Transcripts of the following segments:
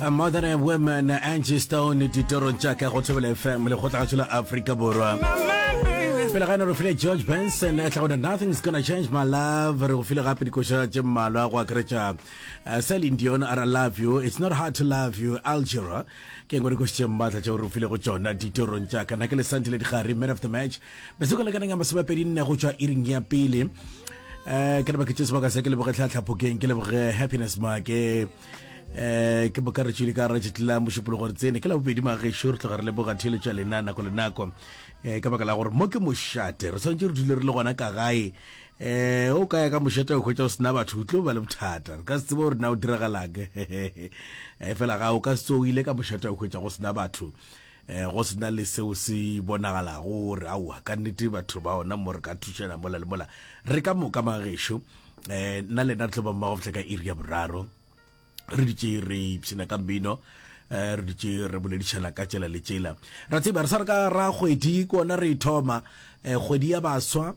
A mother and women Angie Stone ditorong tša ka go thobela fm lekgotlagatšo la afrika borwa pele gane re file george benson e tlagone nothing's gonna change my love re go file gape dikoša tše mmalwa go akaretša uh, celine dion are i love you it's not hard to love you algera ke ngwe dikoša tše mmatla tšeo re file go tšona ditorong tša ka nake le sante le digare man of the match mesoko lekaneng ya masomepedi nne go tšwa iring ya pele um ke lebake tše sebaka se ke leboge tlhatlhapokeng ke leboge happiness make eh ke boka re tšwile ka ra tšitla mošupolo gore tsene ke la bobedi magešo re tloga re leboga theeletša lena nako le nako eh ka baka la gore mo ke mošate re tshwanetse re dule re le gona ka gae eh o kaya ka mošate o hwetša o sena batho o tlo ba le bothata re ka se tsebe gore na o diragalang eh fela ga o ka se o ile ka mošate o hwetša go sena batho eh go sena le seo se bonagalago gore aowa ka nnete batho ba ona mo re ka thušana mola le mola re ka moka magešo eh nna le nna re tlhoba mmago fitlha ka iri ya boraro re ditše re ipshina ka mmino eh re ditše re boledišana ka tšela le tšela ra tseba re sa re ka ra kgwedi kona re ithoma eh kgwedi ya baswa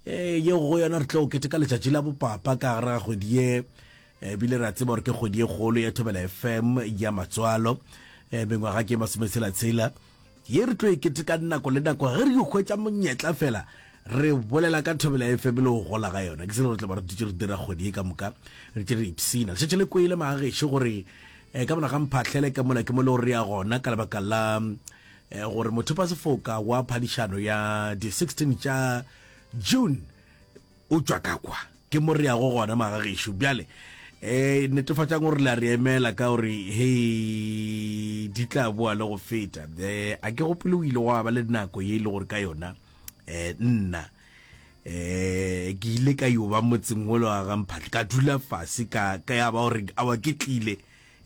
eh ye go yona re tlo keteka letšatši la bopapa ka gare ga kgwedi ye eh, ebile ra tseba gore ke kgwedi ye kgolo ya thobela fm ya matswalo eh mengwaga ke masometshelatshela ye re tlo e ketekang nako le nako ge re yo hwetša monyetla fela re bolela ka thobela ya fm le go gola ga yona ke selo re tla ba re dutše re dira kgwedi e ka moka re tše re ipsina lešetše le kwele magageše gore um ka monaga mphahlele ka mola ke mo le gore ya gona ka lebaka la um gore mothopa sefoka wa phadišano ya di-16 tša june O tšwa ka kwa. Ke mo re yago gona, magagešo. Bjale, ee, netefatšang gore le a re emela, ka gore, hei, di tla boa le go feta. Ee, a ke gopole o ile gwa ba le nako ye e le gore ka yona, ee, nna, ee, ke ile ka yo ba motseng wo le wa ga Mphatle, ka dula fase, ka, ka ya ba gore, awa ke tlile,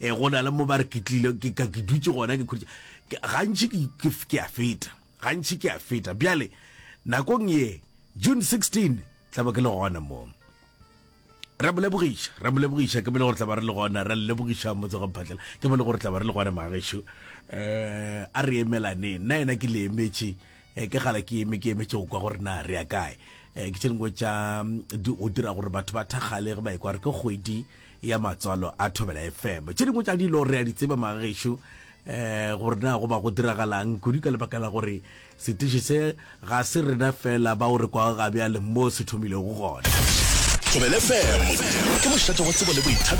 ee, go na le mo ba re ke tlile, ke, ka ke dutše gona, ke khutša, gantši ke, ke, ke a feta. Gantši ke a feta. Bjale, nakong ye, June 16, tla ba ke le gona mo. Ra mo lebogiša, ra mo lebogiša, ke bele gore tla ba re le gona, ra lebogiša motse go mphatlela, ke bele gore tla ba re le gona magešo. Eh, a re emelane, nna yena ke le emetše, eh, ke gala ke eme, ke emetše go kwa gore na re ya kae. Eh, ke tše dingwe tša, mm, di o dira gore batho ba thakgale ge ba ekwa re ke kgwedi, ya matswalo a thobela fm tše dingwe tša dilo re a di tseba magešo um gore na go ba go diragalang kudu ka lebaka la gore setiši se ga se rena fela ba o re kwa ga bjale mo se thomilego gona thobela fm ke mošate wa tsebo le boithabi